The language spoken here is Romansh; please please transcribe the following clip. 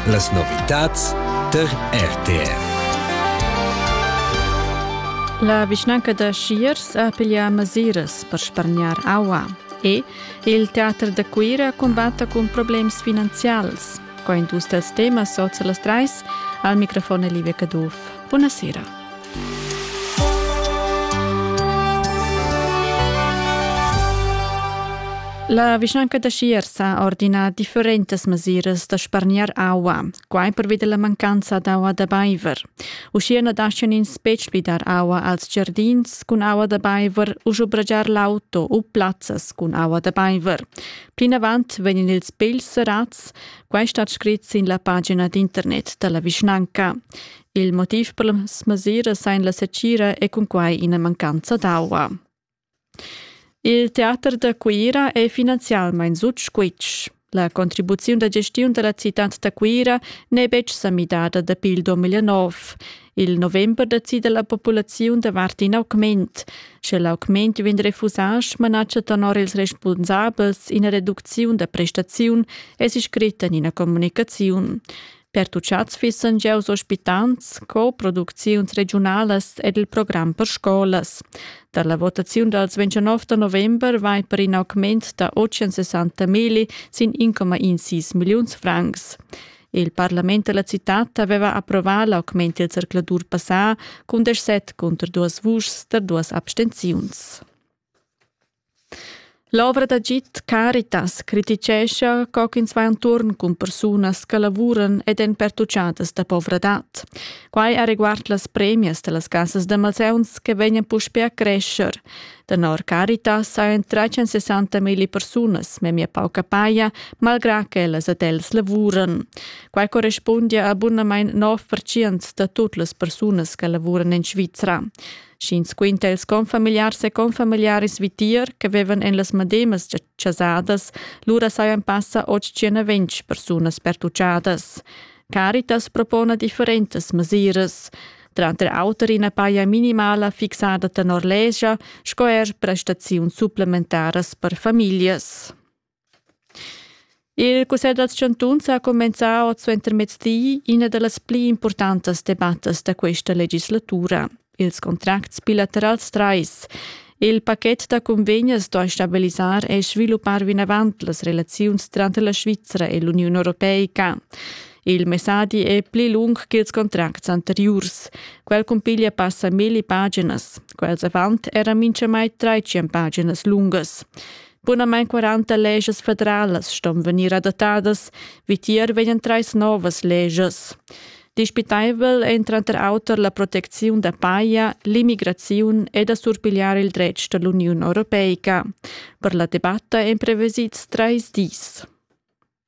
Las novitads tar RTR. La vischnanca da Schiers ha piglià mesiras per spargnar aua e il teater da Cuira cumbatta cun problems finanzials. Co industria temas sozialas trais al microfon Livia Caduff. Buonasera. La vischnanca da Schiers ha ordinà differentas mesiras da spargnar aua, quai pervi da la mancanza d'aua da baiver. Uschia na daschian ins betg pli dar aua als giardins cun aua da baiver u schubragiar l'auto u plazzas cun aua da baiver. Plinavant vegnan ils pegls serrads, quai stat scrit sin la pagina d'internet da la vischnanca. Il motiv per las mesiras ein la secira e cunquei ina mancanza d'aua. Il teater da Cuira è finanzialmein sut squitsch. La contribuziun da gestiun della città da Cuira n'è betg sa midada dapi il 2009. Il november decide la populaziun davart in augment. Sche l'augment vegn refusà, manatscha tenor ils responsabels ina reducziun da prestaziun, è si scrit en ina comunicaziun. Pertucciats fissan giaus ospitants co producziuns regiunalas ed il program per scolas. Dar la votaziun dals 29 da november vai per in augment da 860 mili sin 1,16 milliuns francs. Il parlament della città aveva approvato l'augment del circulatur passà con 17 contro 2 vuschs da 2 abstenziuns. L'ovra d'agid Caritas criticescha co ch'ins va enturn cun persunas che lavuran ed èn pertuchadas da povradad. Quai areguard las premias da las cassas da malsauns che vegnan puspè a crescher. Tenor Caritas hajan 360 milli persunas memia pauca paja, malgrà ch'ellas ed els lavuran. Quai correspundia a bunamain 9% da tut las persunas che lavuran en Svizra. sch'ins quinta ils confamiliars e confamiliaris vitier che vevan en las mademas chasadas, lura sajan passa 820 persunas pertuchadas. Caritas propona differentas mesiras tranter auter ina paia minimala fixada tenor legia sco er prestaziuns supplementaras per famiglias. Il cussegl dals chantuns ha cumenzà oz suentermezdi ina da las pli impurtantas debattas da questa legislatura, ils contracts bilaterals trais. Il pachet da convegnas sto stabilisar e sviluppar vinavant las relaziuns tranter la Svizra e l'Uniun europeica. Il messadi è pli lung ch'ils contracts anteriurs. Quel cumpiglia passa milli paginas. Quels avant eran mintgamai 300 paginas lungas. Bunamain 40 legias federalas ston vegnir adattadas, vitier vegnan trais novas legias. Dispitaivel è tranter auter la protecziun da paja, l'immigraziun ed da surpigliar il dretg da l'Uniun europeica. Per la debatta èn prevesids trais dis.